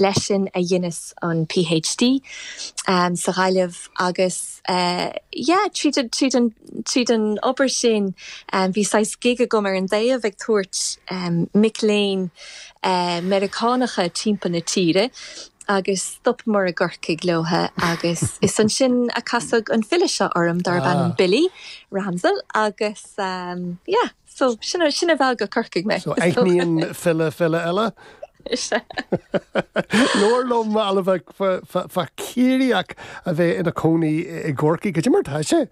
Leis sin a dheineas an PhD sa Ghaillimh agus yeah, tríd an obair sin bhí saghas gig agam ar an dtaobh ag tabhairt mic léinn Meiriceánacha timpeall na tíre agus stopamar i gCorcaigh leo agus is ansin a casadh an file seo orm darb ainm Billy Ramsell agus yeah. So, sin a, sin a mheall go Corcaigh mé. So, aithníonn file file eile? Is ea. Labhair liom, a Ailbhe, fá, fá, fá Ciarraíoch a bheith ina cónaí i gCorcaigh, goidé mar atá sé.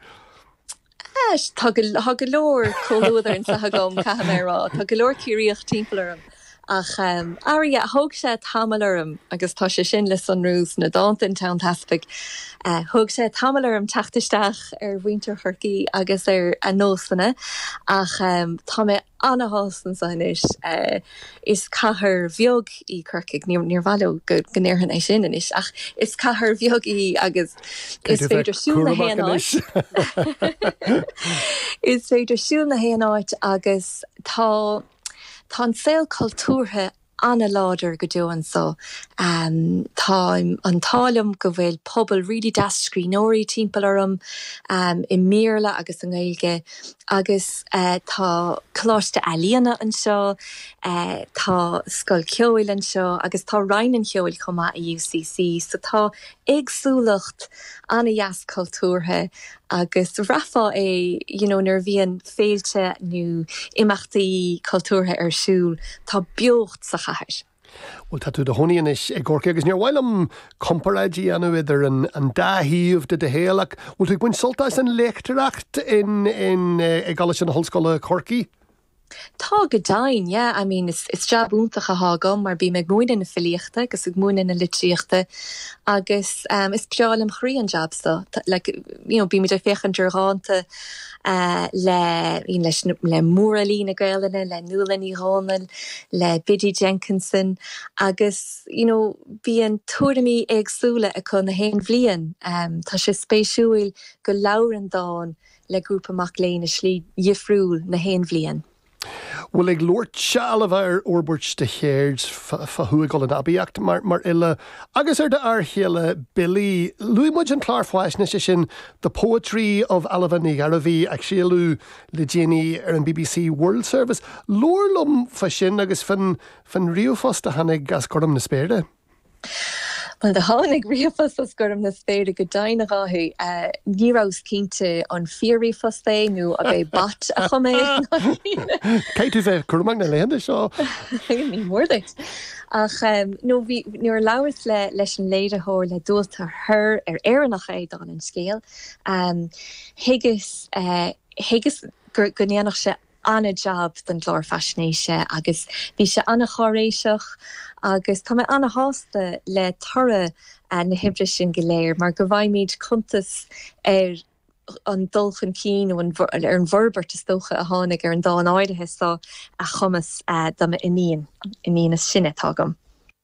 Ais, tá go, tá go leor comhluadar anso agam, caithfidh mé a rá. Tá go leor Ciarraíoch timpeall orm. Ach, arú, thóg sé tamall orm, agus tá sé sin le sonrú sna dánta in Tonn Teaspaigh, thóg sé tamall orm teacht isteach ar mhuintir Chorcaí agus ar a nósanna, ach tá mé ana-shásta anso anois. Is cathair bheag í Corcaigh, níor mhaith leo go ndéarfainn é sin anois, ach is cathair bheag í agus is féidir siúl na haon áit. Is féidir siúl na haon áit agus tá. Tá an saol cultúrtha ana-láidir go deo anso. Tá an t-ádh liom go bhfuil pobal really deas scríbhneoirí timpeall orm, i mBéarla agus i nGaeilge, agus tá Coláiste Ealaíona anseo, tá Scoil Ceoil anseo agus tá Roinn an Cheoil chomh maith i UCC, so tá éagsúlacht ana-dheas cultúrtha agus bhraithfeá é you know nuair a bhíonn féilte nó imeachtaí cultúrtha ar siúl, tá beocht sa chathair. Bhuel, tá tú i do chónaí anois i gCorcaigh agus níor mhaith liom comparáid a dhéanamh idir an dá thaobh de do shaol ach an bhfuil tú ag baint sult as an léachtóireacht i gColáiste na hOllscoile, Corcaigh? Tá, go deimhin, yeah, I mean, is jab iontach atá agam mar bím ag múineadh na filíochta agus ag múineadh na litríochta agus is breá lem chroí an jab so, like, you know, bímid ag féachaint ar dhánta le, you know, leis, le mórfhilí na Gaelainne, le Nuala Ní Dhomhnaill, le Biddy Jenkinson agus, you know, bíonn tuairimí éagsúla acu na haon bhliain. Tá sé spéisiúil go labhrann dán le grúpa mac léinn i slí dhifriúil na haon bhliain. bhuel ag labhairt, a Ailbhe, ar fhorbairt de cheird fá tú ag dul in aibíocht mar mar fhile agus ar do fhear chéile Billy. Luaigh muid an clár faisnéise sin The Poetry of Ailbhe Ní Ghearbhuigh a craoladh le déanaí ar an bbc World Service. Labhair liom fá sin agus fán fán ríomhphost a tháinig as gorm na spéire. Bhuel, do tháinig ríomhphost os gorm na spéire go deimhin, a Dháithí. Ní rabhas cinnte an fíor-ríomhphost é nó an é bot a chum é nó caitheann tú a bheith cúramach na laethanta seo? ní mór duit. Ach nó bhí, nuair a labhras le, leis an léiritheoir, le Dualta thoir, ar Éireannach é, dála an scéil, thuigeas, thuigeas go ndéanfadh sé an-jab don gclár faisnéise agus bhí sé an-cháiréiseach agus tá mé an-sásta le toradh na hoibre sin go léir mar go bhfaighimid cuntas ar an dul chun cinn nó ar an bhforbairt is dócha a tháinig ar an dán áirithe so a chumas do m'iníon, iníon is sine atá agam.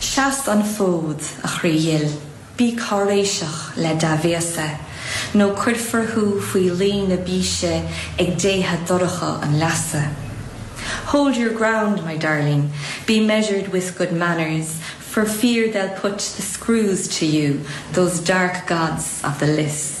Seas an fód, a chroí dhil, bí cáiréiseach le dea-bhéasa, nó cuirfear thú faoi luí na bíse ag déithe dorcha an leasa. Hold your ground, my darling, be measured with good manners, for fear they'll put the screws to you, those dark gods of the lios.